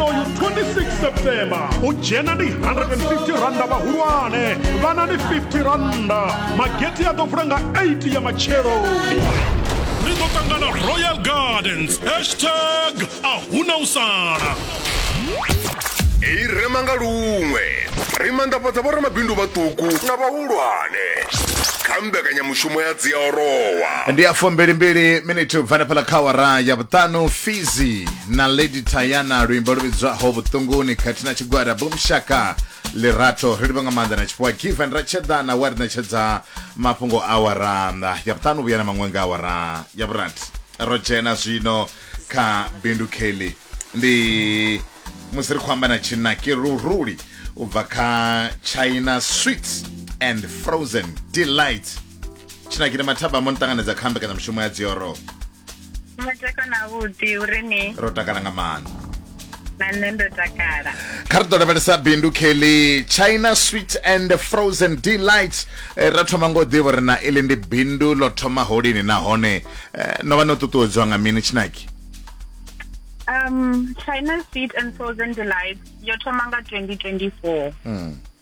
uyu 26 september u dzhena ndi 150 randa vhahulwane vhana ndi 50 randa mageti a ḓo vula nga 8 ya matshelo ri ḓo ṱangana royal gardens hashtag a huna u sala i rema nga luṅwe ri manḓafhadza vhoramabindu vhaṱuku na vhahulwane kha mbekanyamushumo ya dziaorowa ndi ya fumbili mbili miniti u bva na fhala kha awara ya vhuṱanu fizi na lady tayana luimbo lu vhidzwaho vhuṱunguni khathihi na tshigwada bumshaka lirato ri livha nga maanḓa na tshifhiwa given ra tshedana wa ri ṋetshedza mafhungo a waranda ya vhuṱanu vhuya na maṅwe nga awara ya vhurathi ro dzhena zwino kha bindu kelly ndi musi ri khou amba na tshinaki luruli u bva kha china sweet and frozen delight tshinaki ni mathabamo ni ṱanganedza kha mbekanyamushumo ya dzioro mutakalo na vhuḓi uri ni ro takala nga maanḓa na nṋe ndo takala kha ri ḓo lavhelesa bindu kelly china sweet and frozen delight eh, ra thoma ngo ḓivha uri na iḽi ndi bindu ḽo thoma holini nahone eh, no vha no ṱuṱuwedzwa nga mini tshinaki um china sweet and frozen delight yo thoma nga 2024 mm.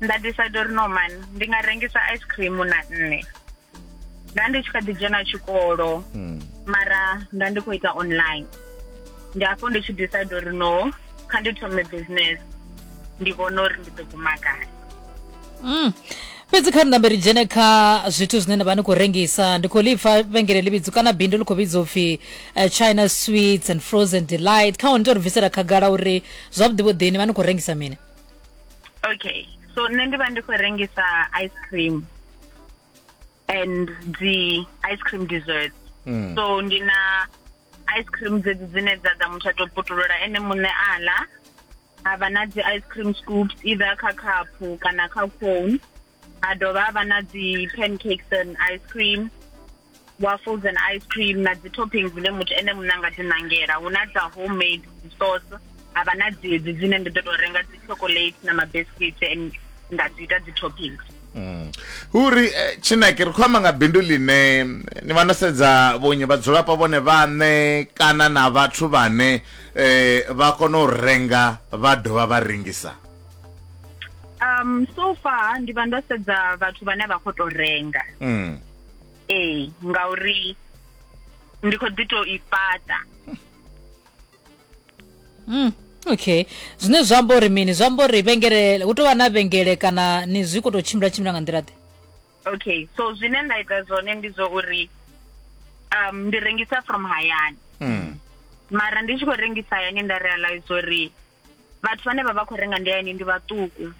nda decide uri no man ndi nga rengisa ice cream na nne nda ndi tshi kha ḓi dzhena tshikolo hmm. mara nda ndi khou ita online ndi afho ndi tshi decide uri no kha ndi thome business ndi vhona uri ndi ḓo guma gai hmm. fhedzi kha rinambe ri dzhene kha zwithu zwine nda vha ni khou rengisa ndi khou lipfa vhengele ḽi vhidzo kana bindu ḽi khou vhidzwa upfhi eh, china sweets and frozen delight kha hone to ri bvisela khagala uri zwavhuḓi vhuḓini vha ni khou rengisa mini okay so nṋe ndi vha ndi khou rengisa ice cream and dzi ice cream desserts mm. so ndi na ice cream dzedzi dzine dza ḓa muthu a tou putulula ene muṋe a ḽa ha vha na dzi ice cream scoops either kha khaphu kana kha cone ha dovha ha vha na dzi pancakes and ice cream waffles and ice cream na dzi toppings dzine muthu ene muṋe a nga dzi ṋangela hu na dza homemade dzi sauce ha vha na dzedzi dzine ndi ḓo tou renga dzi chocolate na mabiscuits and nda dzi ita dzi toppings Mm. uri eh, tshinaki ri khou amba nga bindu ḽine ni vha no sedza vhonyi vhadzulapo vhone vhaṋe kana na vhathu vhane eh, vha kona u renga vha dovha vha rengisa um so far ndi vha ndo sedza vhathu vhane vha khou tou renga mm. ee ngauri ndi khou ḓi tou i fhaṱa Mm, okay zwine zwa amba uri mini zwa amba uri vhengele hu tou vha na vhengele kana ni zwi khou tou tshimbila tshimbila nga nḓila ḓe okay so zwine nda ita zwone ndi zwa uri um ndi rengisa from hayani Mm. mara ndi tshi khou rengisa hayani nda realize uri vhathu vhane vha vha khou renga nḓilani ndi vhaṱuku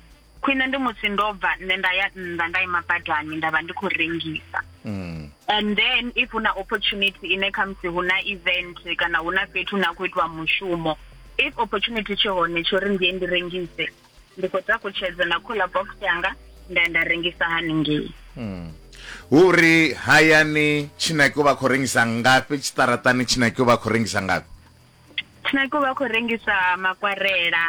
khwine ndi musi ndo bva nṋe nda ya nnḓa nda ima badani nda vha ndi khou rengisa mm. and then if hu na opportunity ine khamusi hu na event kana hu na fhethu hune a khou itiwa mushumo if opportunity tshi hone tsho ri ndiye ndi rengise ndi khou takutshedza na cooler box yanga nda nda rengisa haningei mm. hu uri hayani tshinaki u vha khou rengisa ngafhi tshiṱaratani tshinaki u vha khou rengisa ngafhi Tshinako vha khou rengisa makwarela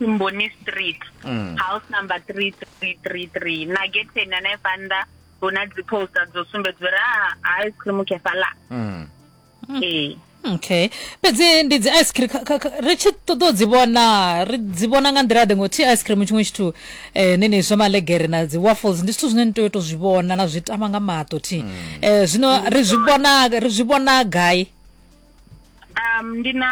Mboni mm. Street mm. house number 3333 na getheni hanefha nnḓa hu na dzi poster dzo sumbedza uri a ah, ice cream khefhala mm. ee okay fhedzi ndi dzi ice cream ri tshi ṱoḓa u dzi vhona ri dzi vhona nga nḓila ḓe ngo thi ice cream tshiṅwe tshithu eh, nini zwa malegere na dzi waffles ndi zwithu zwine ni tea u to zwi vhona na zwi tama nga maṱo thi eh, zwino ri zwi vhona ri zwi vhona gai um ndi na